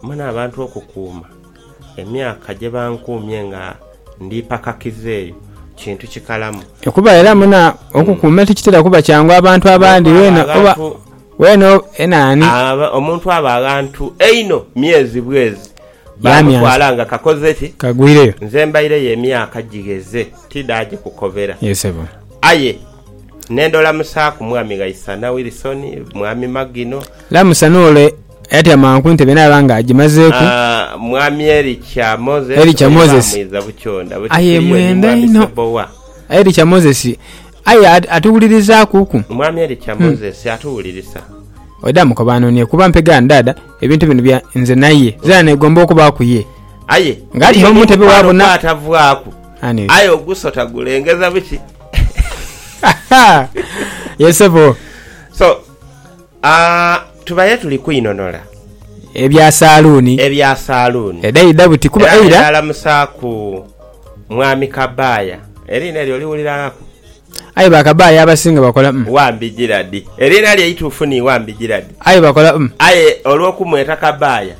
Wamu n'abantu okukuuma emyaka gye bankuumye nga ndi ipakakivu eyo kintu kikalamu. Kuba era muna okukuuma tikitera kuba kyangu abantu abandi weena oba weena enaani. Omuntu aba aghantu einho myezi bwezi baamutwala nga kakoze ki? Kagwireyo. Nze mbaireyo emyaka gigheze tidaagikukobera. Aye. Ne ndolamusaaku Mwami Ghaisana Wilson, Mwami Magino. Lamusa n'ole ayatyamanku entebe naaba nga agimazeeku. Mwami Ericha Moses, Ericha Moses, aye mwenda inho. Ericha Moses, aye atuwulirizaakuku. Mwami Ericha Moses, atuwulirisa. Oidha mukoba anoonie kuba mpegaani dhaadha ebintu bino bya nze naye. Nzena neegomba okubaaku ye. Aye, eriyo n'omukwano gw'atavaaku, aye ogusota gulengeza biki? yes sebo so uh, tubaire tuli kwinonora ebya saluuni ebya saluuni edaidha buti kuba era eira alamusaaku mwami kabaaya eriina eryo oliwuliranaku aye bakabaaya abasinga bakola mm, wambi giradi eriina lye ituufu ni wambi giradi aye bakola mm. aye olwokumweta kabaaya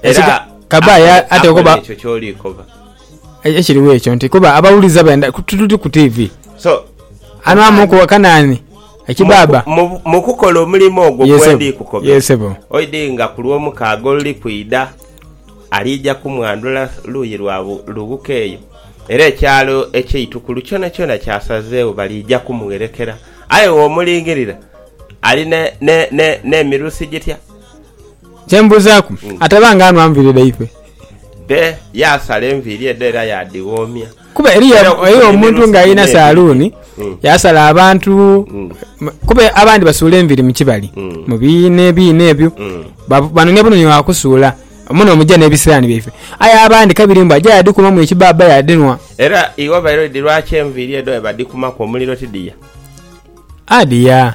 era Ekiga- kabaaya akola- ate akola okoba- ekyo kyolikoba Ekiriwo ekyo nti kuba abawuliza benda tuli ku tivi. So Anwamuku wa Kanaani ekibaaba. Mu, mu, mu kukola omulimo ogwo Ye, gwe ssebo. ndi kukobera, Ye, ssebo. oidhi nga ku lw'omukaaga oluli kwidha, aliija kumwandhula luuyi lwa bu, lughuka eyo. Era ekyalo eky'eitukulu kyonakyona kyasazeegho, baliija kumugherekera. Aye womulingirira, ali ne, ne, ne, n'emirusi gitya? Kye mbuuzaaku, ataba nga anhwa nviiri dhaifwe? Dhe, yaasala enviiri edho era yaadhighoomya. Kuba eriyo omuntu ng'alina saaluuni, yaasala abantu. Kuba abandi basuula enviiri mu kibali, mu biina ebiina ebyo, banonia bunonia wa kusuula muno omuja n'ebisiraani byaife. Aye abandi kabiri mbu aja yaadhikumamu ekibaabba yaadhinhwa. Era iwe obaire oti lwaki enviiri edho bwe badhikumaku omuliro tidhia? Adhia.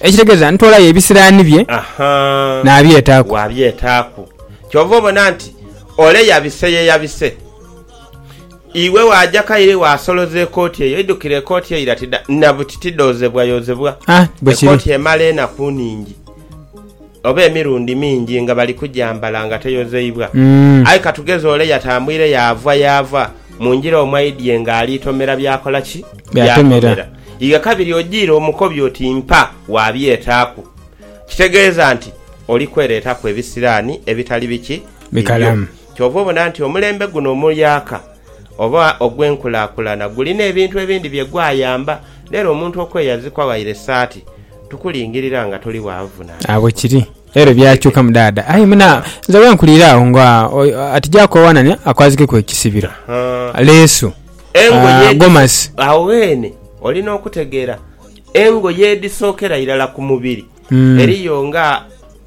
Ekitegeeza ntoolayo ebisiraani bye naabyetaaku. Waabyetaaku. Kyova obona nti ole yabise ye yabise. Iwe waaja kaire waasoloza ekooti eyo. Idhukire ekooti eira ti dha, na buti ti dhoozebwayozebwa. Ekooti emala enaku nhingi. oba emirundi mingi nga bali kugyambala nga teyozeibwa. Aye ka tugeze ole yatambwire yaava yaava mu ngira omwaidhie ng'ali tomera by'akola ki? By'atomera. Igha kabiri ojiire omukobi oti mpa wa byetaaku. Kitegeeza nti oli kwereetaku ebisiraani ebitali biki? Bikalamu. Kyova obona nti omulembe guno omuyaaka oba ogw'enkulakulana gulina ebintu ebindi bye gwayamba, n'era omuntu okweyazikwa waire esaati, tukulingirira nga toli wa nvunanhizibwa. Agho kiri. Era ebyakyukamu dhaadha. Aye muna, nze wenkulira agho nga ati ja kwewanania akwazikeku ekisibiro, leesu, gomasi. Agho ghene olina okutegeera engoye edhisookera irala ku mubiri. Mm. Eriyo nga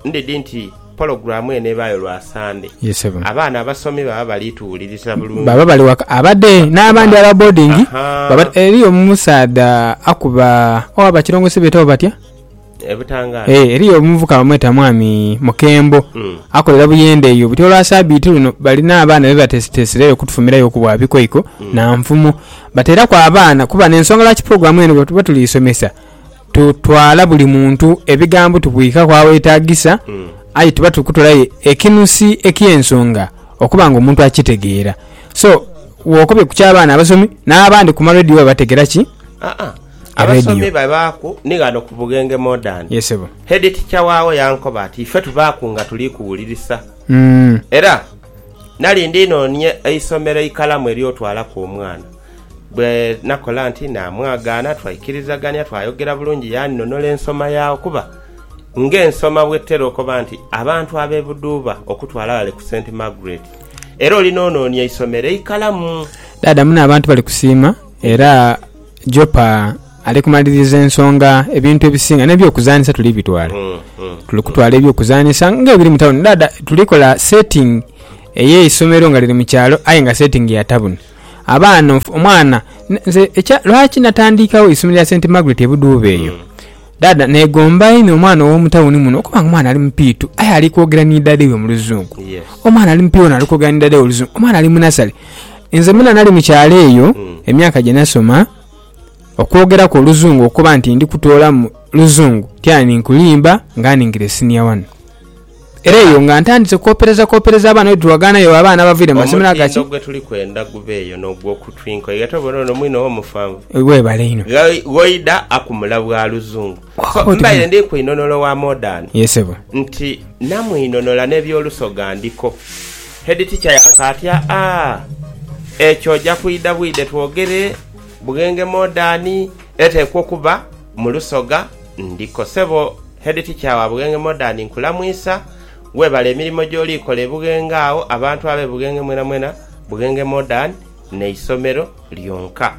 ndhidhi nti pologulaamu eno ebaayo lwa Sande, Ye ssebo. abaana abasomi baba bali tuwuliriza bulungi. baba bali waka abade n'abandi aba boarding Aha. baba eriyo omusaadha akuba owa bakilongosi beetawo batya E Butangaala. Eh, eriyo omuvuka bamweta mwami Mukembo Mm. akolera Buyende eyo buti olwa sabiiti luno balina abaana be batesitesireyo okutufumirayo ku bwa bikoiko na nfumo bateeraku abaana kuba n'ensonga lwaki pulogulaamu eno bwe tuba tuliisomesa Tutwala buli muntu ebigambo tubwika ku awetagisa, aye tuba tuli kutolayo ekinusi eky'ensonga okuba nga omuntu akitegeera. So, wokobye ku ky'abaana abasomi, n'abandi ku marediyo babategera ki? Aa, abasomi babaaku ni ghano ku Bughenge Modern. Ye sebo. Headteacher waagho yankoba ati ife tubaaku nga tuli kuwulirisa. Era nali ndi nonie eisomero eikalamu ery'otwalaku omwana. Bwe nakola nti naamwagaana, twaikirizagania, twayogera bulungi, yaanhonola ensoma yaao. Kuba ng'ensoma bw'etera okoba nti abantu ab'e Buduuba okutwala ghale ku Saint Margaret, era oli n'onoonia eisomero eikalamu. Daadamu n'abantu bali kusiima era Jopa ali kumaliriza ensonga ebintu ebisinga n'ebyokuzanhisa tuli bitwala. Tuli kutwala ebyokuzanhisa ng'ebiri mu tawuni. Daada tuli kola setting ey'eisomero nga liri mu kyalo aye nga setting ya tawuni. Abaana onf, omwana ne, nze ekya, lwaki natandiikawo eisomero lya Saint Margaret e Budhuuba eyo? Dhaadha, neegomba inho omwana ow'omu tawuni muno okuba nga omwana ali mupiitu aye ali kwogera ni dhaadhe we mu Luzungu. Omwana ali mupiitu ono ali kwogera ni dhaadhe we mu Luzungu. Omwana ali mu nasale. Nze mwena nali mu kyalo eyo, emyaka gye nasoma, okwogeraku Oluzungu okuba nti ndi kutoolamu Luzungu, ti ani nkulimba nga aningire siniya wani. Era eyo nga ntandise kwoperezakwopereza abaana bwe tulagaana yo abaana abavaire mu masomero aga ki. Omutindo gwe tuli kwenda gubeeyo n'ogw'oku twinkoi nga tobona ono mwine oba mufanvu. Weebale inho. Ghoida akumula bwa Luzungu. So mbaire ndi kwinhonhola owa Modern. Ye ssebo. Nti namwinhonhola n'eby'Olusoga ndiko. Head Teacher yanka ati, Aa, ekyo oja kwidha bwidhe twogere, Bughenge Modern eteekwa okuba. Mu lusoga ndiko sebo Head Teacher wa Bugenge Modern nkulamwisa, webale emirimo gyoli kola e Bugenge agho, abantu abe Bugenge mwena mwena, Bugenge Modern ne isomero lyonka.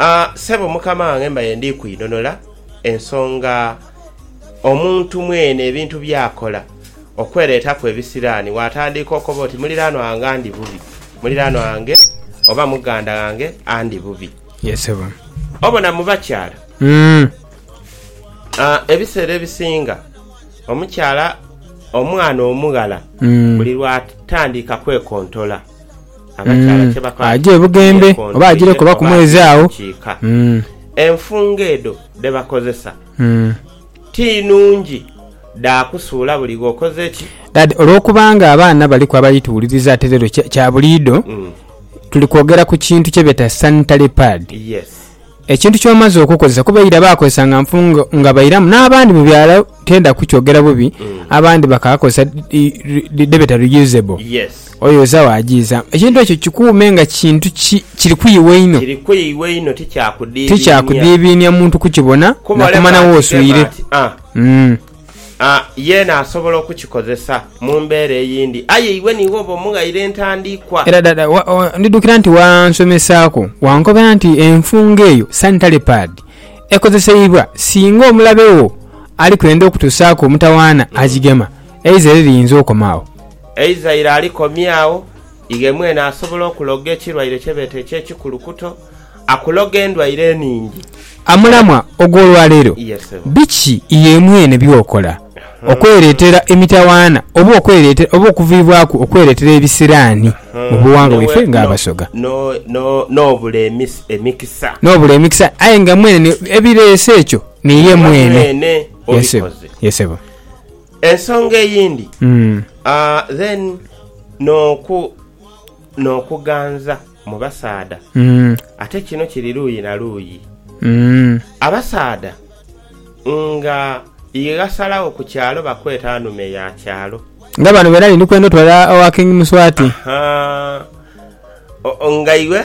Aah sebo mukama wange mbaire ndi kwidhonola ensonga omuntu mwene ebintu byakola okweretaku ebisirani watandiika okoba oti muliranwa wange andi bubi, muliranwa wange oba muganda wange andi bubi. Ye sebo. Obona mu bakyala ebiseera ebisinga omukyala omwana omughala buli lwatandika kwekontola abakyala kyebakola aja ebugembe oba ajireku oba ku mwezi agho enfungo edho dhebakozesa. Ti nungi dha kusuula buli gh'okoze ki? Dad, Olw'okubanga abaana baliku abali tuwuliriza ate leero kya kya buliido, tuli kwogera ku kintu kye beeta sanitary pad. Yes. Ekintu ky'omaze okukozesa kuba eira baakozesa nga nfu nga nga bairamu n'abandi mu byalo tenda kukyogera bubi, abandi bakaakozesa dhi dhi dhi dhebeeta reusable. Yes. Oyoza waajiizamu. Ekintu ekyo kikuume nga kintu ki, kiri ku iwe inho. Kiri ku iwe inho, tikyakudiibiinia. Tikyakudiibiinia muntu kukibona, Kuba oleka nakumanya wo akigema oswire. ati, Ah, Mm. ah, yeena asobola okukikozesa mu mbeera eyindi. Aye iwe niiwe oba omughaire entandikwa. Era dada, wa, wa, ndidhukira nti wansomesaaku, wankobera nti enfungo eyo, sanitary pad, ekozeseibwa singa omulabe wo ali kwenda okutuusaaku omutawaana agigema, eiza era eriyinza okoma agho. Eizaire alikomya agho, ighe mwene asobola okuloga ekirwaire kye beeta eky'ekikulukuto, akuloga endwaire enhingi. Amulamwa ogw'olwaleero, Ye ssebo. Biki iwe mwene by'okola okwereetera emitawaana oba okwereetera oba okuviibwaku okwereetera ebisiraani mu bughangwa bwaife ng'Abasoga? No, no, n'obula emisa, emikisa. N'obula emikisa, aye nga mwene ni, ebireese ekyo niye Niiwe mwene. mwene Ye ssebo. obikoze. Ye ssebo. Ensonga eyindi then n'okuganza mu basaadha ate kino kiri luuyi na luuyi. Abasaadha nga ighasalagho ku kyalo bakweta nhume ya kyalo. Nga bano beena ni ndi kwenda otwala owa King Muswati. Nga iwe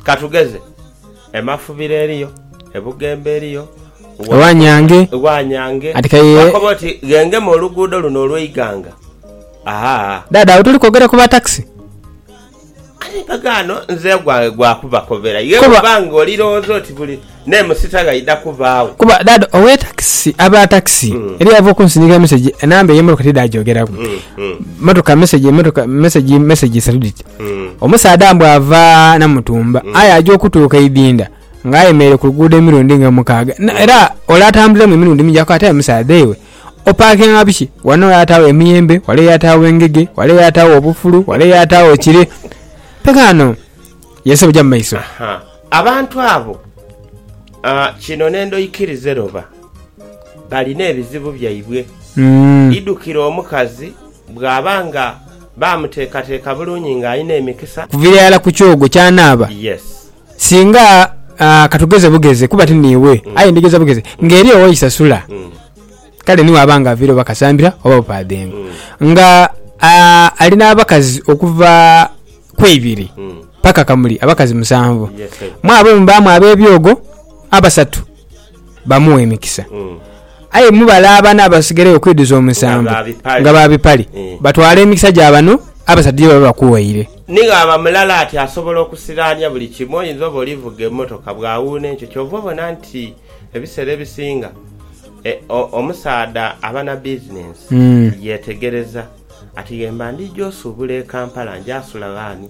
katugeze. E Mafubiro eriyo, e Bugembe eriyo. Ewa Nyange. Ewa Nyange. Ati kaye. Wakoba oti ghengema oluguudo luno olw'eighanga. Ahaa. Dhaadha awo toli kwogera ku ba takisi? Aye mpagaano nze ogwange gwa kubakobera ye bw'oba ng'oli lowooza oti buli n'emusita ghaidha kubaagho. Kuba dhaadha ow'e takisi, aba takisi eriyo ava okunsindikira mesegi enamba ey'emmotoka tidhaagyogeraku. motoka message motoka message message isatu dhiti omusaadha mbu ava namutumba aye aja okutuuka eidhinda nga ayemereire ku luguudo emirundi nga mukaaga Na- era ole atambuliremu emirundi mingi akoba ati aye musaadha ewe opakinga biki wano yatagho emiyembe wale yatagho engege wale yatagho obufulu wale yatagho kire kaano ye sebo ja mu maiso Ha, abantu abo ah, kino nendho ikirize loba balina ebizibu byaibwe. Idhukire omukazi bw'aba nga baamuteekateeka bulungi ng'alina emikisa. Okuviira irala ku kyogo ky'anaaba. Yes. Singa, ah, ka tugeze bugeze, kuba ti niiwe, aye ndigeza bugeze, ng'eri ow'eisasula, kale ni bw'aba nga aviire oba kasambira oba bupaadhengo, nga, ah, ali n'abakazi okuva ku ibiri paka kamuli abakazi musanvu, mw'abo mubaamu ab'ebyogo abasatu. bamugha emikisa. Aye mubale abana abasigairegho okwidhuza omusanvu nga ba bipale, batwale emikisa gya bano abasaatu gye baba bakuwaire. Ni ghaba mulala ati asobola okusiraania buli kimu. Oyinza oba oli vuga emmotoka bwawuuna enkyo. Kyova obona nti ebiseera ebisinga omusaadha aba na bizinensi yetegereza ati ghemba ndhija osuubula e Kampala nja sula ghani?